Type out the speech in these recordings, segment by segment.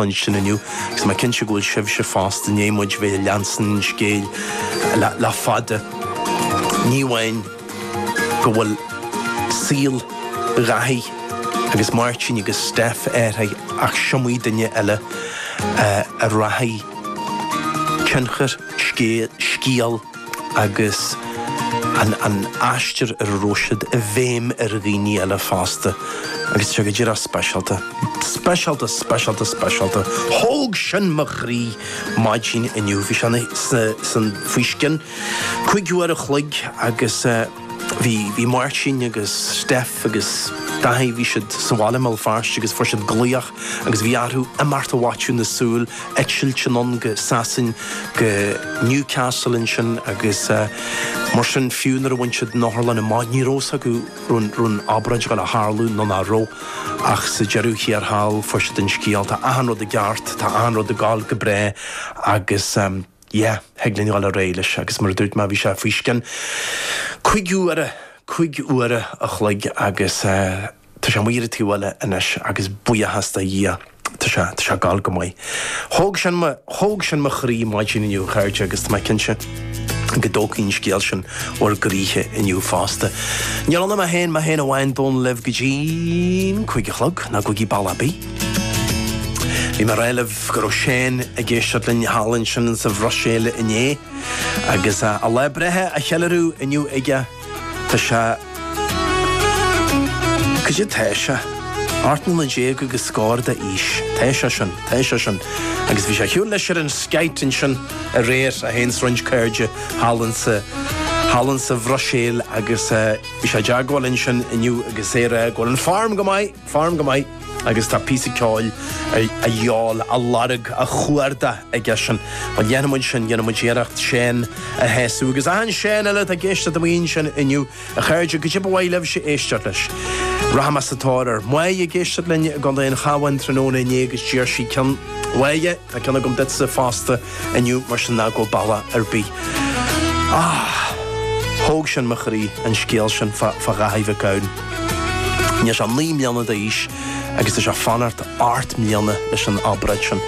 ansin inniu, agus mé cinnte go bhfuil sibhse fosta, i ndiaidh muid a bheith ag leanstan an scéil le fada. Ní amháin go bhfuil saol Dhaithí agus Máirtín agus Steph athraithe ach is iomaí duine eile a rachaidh tionchar scéil, scéil, agus an aistear ar a raibh siad i bhfeidhm ar dhaoine eile fosta, agus seo go díreach speisialta, speisialta, speisialta, speisialta, thóg sin mo chroí maidin inniu, bhí sé faoi scian, cúig uair an chloig agus. Bhí, bhí Máirtín agus Steph agus Daithí, bhí siad sa bhaile i mBéal Feirste agus fuair siad glaoch agus bhí orthu imeacht i bhfaiteadh na súl, eitilt anonn go Sasain, go Newcastle ansin agus mar sin fiú nuair a bhain siad an otharlann amach ní raibh a fhios acu raibh, raibh an obráid ag gabháil a tharlú nó ná raibh ach sa deireadh thiar thall fuair siad an scéal tá achan rud i gceart, tá achan rud ag gabháil go breá agus. yeah, thig linn dhul ar aghaidh leis agus mar a dúirt mé, bhí sé faoi scian cúig uaire, cúig uaire a chloig agus tá sé amuigh ar an taobh eile anois agus buíochas do Dhia, tá sé, tá sé ag gabháil go maith. Thóg sin mo, thóg sin mo chroí maidin inniu, a chairde, agus tá mé cinnte go dtógfaidh an scéal sin bhur gcroíthe inniu fosta. Níl ann ach mé féin, mé féin amháin, Dónall libh go dtí an cúig a chlog, ná gabhaigí bealach ar bith. Bhí mé ag rá libh go raibh Shane ag éisteacht linn thall ansin sa Bhruiséil inné agus a lá breithe á cheiliúradh inniu aige. Tá sé Cad é tá sé? Ocht mbliana déag agus scór d'aois. Tá sé sin, tá sé sin. Agus bhí sé ar shiúl leis ar an skite ansin aréir é féin is roinnt cairde thall ansin, thall ansin sa Bhruiséil agus bhí sé i dteagmháil ansin inniu agus é ag rá go bhfuil an form go maith. Form go maith agus tá píosa ceoil a dhíobháil, a lorg, a chuardach aigesean. Bhuel, dhéanfaidh muid sin, dhéanfaidh muid iarracht Shane a shásamh agus achan Shane eile atá ag éisteacht amuigh ansin inniu, a chairde, cad é ba mhaith libhse éisteacht leis. Rachaidh mé sa tóir air. Mháigh ag éisteacht linn i gContae an Chabháin tráthnóna inné agus d'iarr sí ceann Mháighe. Tá ceann agam duitse fosta inniu mar sin ná gabh bealach ar bith. Ah! Thóg sin mo chroí, an scéal sin fá Dhaithí Mhic Gabhann. Níl sé ach naoi mbliana d'aois agus tá sé ag fanacht ocht mbliana leis an obráid sin.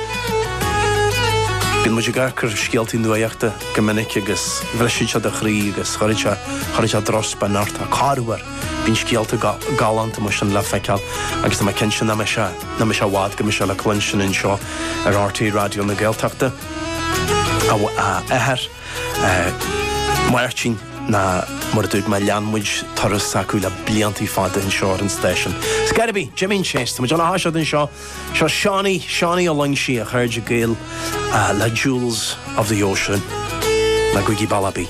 Bíonn muid ag amharc ar scéaltaí nuachta go minic agus bhrisfeadh sé do chroí agus chuirfeadh sé, chuirfeadh sé drochspion ort. Ach corruair bíonn scéalta galánta mar sin le feiceáil agus tá mé cinnte nach mbeidh sé Ná raibh sé i bhfad go mbeidh sé le cluinstin anseo ar RTÉ Raidió na Gaeltachta. A Áth mór, oraibh, mar a dúirt mé, lean muid turas s'acu le blianta fada anseo ar an stáisiún. It's gotta be Jimín Chase. Tá muid ag gabháil a thoiseacht anseo. Seo Seánaí, Seánaí Ó Loingsigh, a chairde gaoil le Jewels of the Ocean le Guigibalabi.